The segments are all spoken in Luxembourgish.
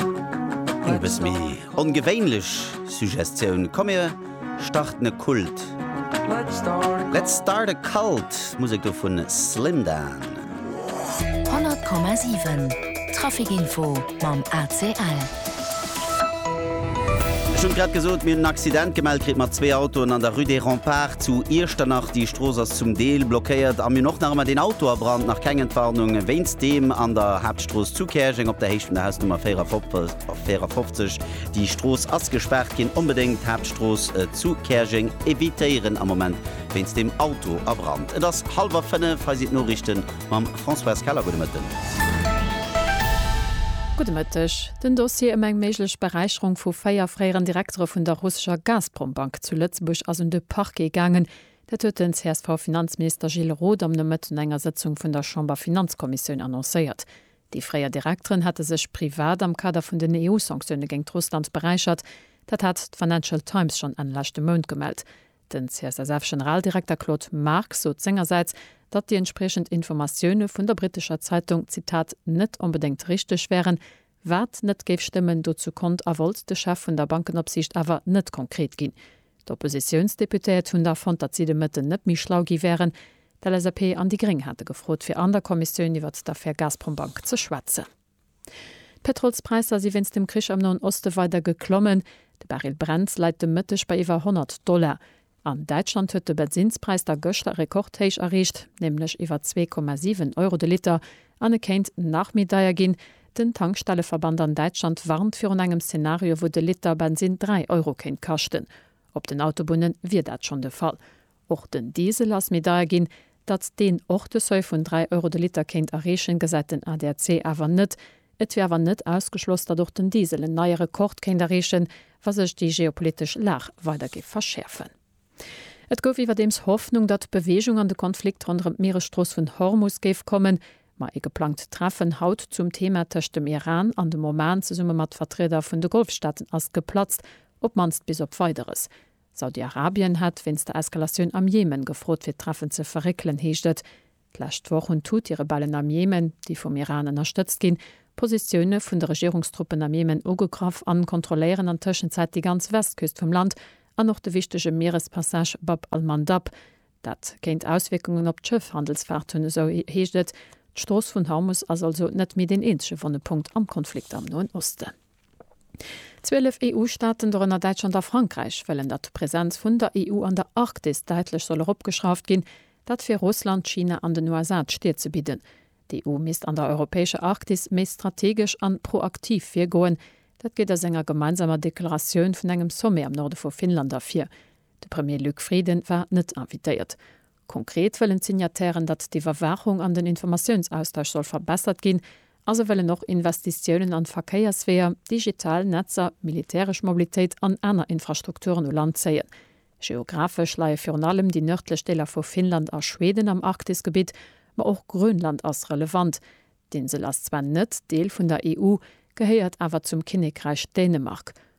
Eng bëss méi ongewéinlech Suggestioun, komm mir starten e Kult, Let's start a cult, d'Musek do vun Slimdan. 100,7 Traficinfo mam ACL. Ech hunn et grad gesot, mir hunn en Accident gemellt kritt mat zwee Autoen an der Rue des Remparts zu Iechternach. Déi Strooss ass zum Deel blockéiert a mir hunn och nach ëmmer deen Auto a Brand, nach keng Entwarnung wéinst deem an der Haaptstrooss. D'Strooss zu Käerjeng op der Héicht vun der Hausnummer 54, déi Strooss ass gespaart ginn. Onbedéngt d'Haaptstrooss zu Käerjeng evitéieren am Moment wéinst dem Auto a Brand. Et ass hallwer 5, hei sinn d'Noriichte mam Françoise Keller. Gudde Mëtten. Gudde Mëtteg. Den Dossier ëm eng méiglech Beräicherung vu véier fréieren Direktere vun der russescher Gazprom-Bank zu Lëtzebuerg ass un de Parquet gaangen. Dat huet den CSV-Finanzminister Gilles Roth am Nomëtt un enger Sëtzung vun der Chamberfinanzkommissioun annoncéiert. Déi fréier Direkteren hate sech privat am Kader vun den EU-Sanktioune géingt Russland beräichert. Dat hat d'Financial Times schonn Enn leschte Mount gemellt. Den CSSF-Generaldirekter Claude Marx sot sengersäits, datt déi entspriechend Informatioune vun der brittescher Zeitung, Zitat, net onbedéngt richteg wären, Wat net géif stëmmen, dozou konnt a wollt de Chef vun der Bankenopsiicht awer net konkret ginn. D'Oppositiounsdeputéiert hunn da fonnt, datt si de Mëtten net méi schlau gi wären. D'LSAP an déi Gréng hate gefrot, fir an der Kommissioun iwwert d'Affär Gazprom Bank ze schwätzen. D'Pétrolspräisser si wéinst dem Krich am Noen Oste weider geklommen. De Barrel Brent läit de Mëtteg bei iwwer 100 Dollar. An Däitschland huet de Bensinnspräis da gëschter e Rekordhéich erreecht, nämlech iwwer 2,7 Euro de Liter, an e kéint nach méi deier ginn. Den Tankstelleverband an Däitschland warnt virun engem Szenario, wou de Liter Bensinn 3 Euro kéint kaschten. Op den Autobunne wier dat schonn de Fall. Och den Diesel ass méi deier ginn, Datt deen och de Seuil vun 3 Euro de Liter kéint erreechen, gesäit den ADAC awer net. Et wier awer net ausgeschloss, datt och den Diesel en neie Rekord kéint erreechen, wa sech déi geopolitesch Lag weider géif verschäerfen. Et gouf iwwerdeems Hoffnung, datt Beweegung an de Konflikt ronderëm d'Mieresstrooss vun Hormus géif kommen. Ma ee geplangt Treffen haut zum Thema tëscht dem Iran an dem Oman zesumme mat Vertrieder vun de Golfstaaten ass geplatzt, op d'mannst bis op Weideres. Saudi-Arabien hätt wéinst der Eskalatioun am Jemen gefrot fir d'Treffen ze verréckelen, heescht et. D'lescht Woch hunn d'Huthi-Rebellen am Jemen, déi vum Iran ënnerstëtzt ginn, Positioune vun de Regierungstruppen am Jemen ugegraff an kontrolléieren an Tëschenzäit déi ganz Westküst vum Land an och de wichtege Mierespassage Bab al-Mandab. Dat kéint Auswierkungen op d'Schëffhandelsfaart hunn, esou heescht et. D'Strooss vun Hormus ass also net méi deen eenzege wonne Punkt am Konflikt am Noen Osten. Zwielef EU-Staaten, dorënner Däitschland a Frankräich, wëllen, datt d'Presenz vun der EU an der Arktis däitlech soll eropgeschrauft ginn. Dat fir Russland, China an den USA d'Stir ze bidden. D'EU misst an der europäescher Arktis méi strategesch an proaktiv virgoen. Dat geet aus enger gemeinsamer Deklaratioun vun engem Sommet am Norde vu Finnland ervir. De Premier Luc Frieden war net invitéiert. Konkret wëllen d'Signatairen, datt d'Iwwerwaachung an den Informatiounsaustausch soll verbessert ginn a se wëllen och Investitiounen an Verkéiersweeër, digital Netzer, militäresch Mobilitéit an aner Infrastrukturen u Land zéien. Geographesch leie virun allem déi nërdlech Deeler vu Finnland a Schweden am Arktisgebitt, ma och Grönland ass relevant. D'Insel ass zwar net Deel vun der EU, gehéiert awer zum Kinnekräich Dänemark.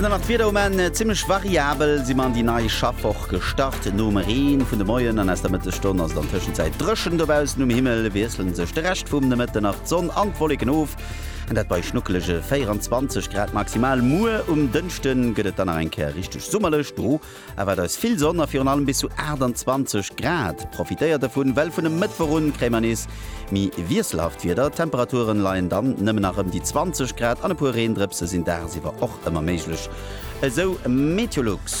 An dann nach d'Wieder um Enn, Zimmlech variabel si mer an déi nei Schaffwoch gestart. Nom Reen vun de Moien an aus der Mëttesstonn ass et an Tëschenzäit dréchen. Dobaussen um Himmel wiesselen sech de Rescht vum Nomëtten nach d'Sonn an d'Wolleken of, an dat bei schnuckelege 24 Grad maximal. Muer um Dënschde gëtt et dann nach eng Kéier richteg summerlech, do Erwaart eis vill Sonn a virun allem bis zu 28 Grad. Profitéiert dervun, well vun e Mëttwoch un kréie mer nees méi wiesselhaft Wieder. D'Temperature leien dann nëmmen nach ëm déi 20 Grad an e puer Reendrëpse sinn dagsiwwer och ëmmer méiglech, esou Meteolux.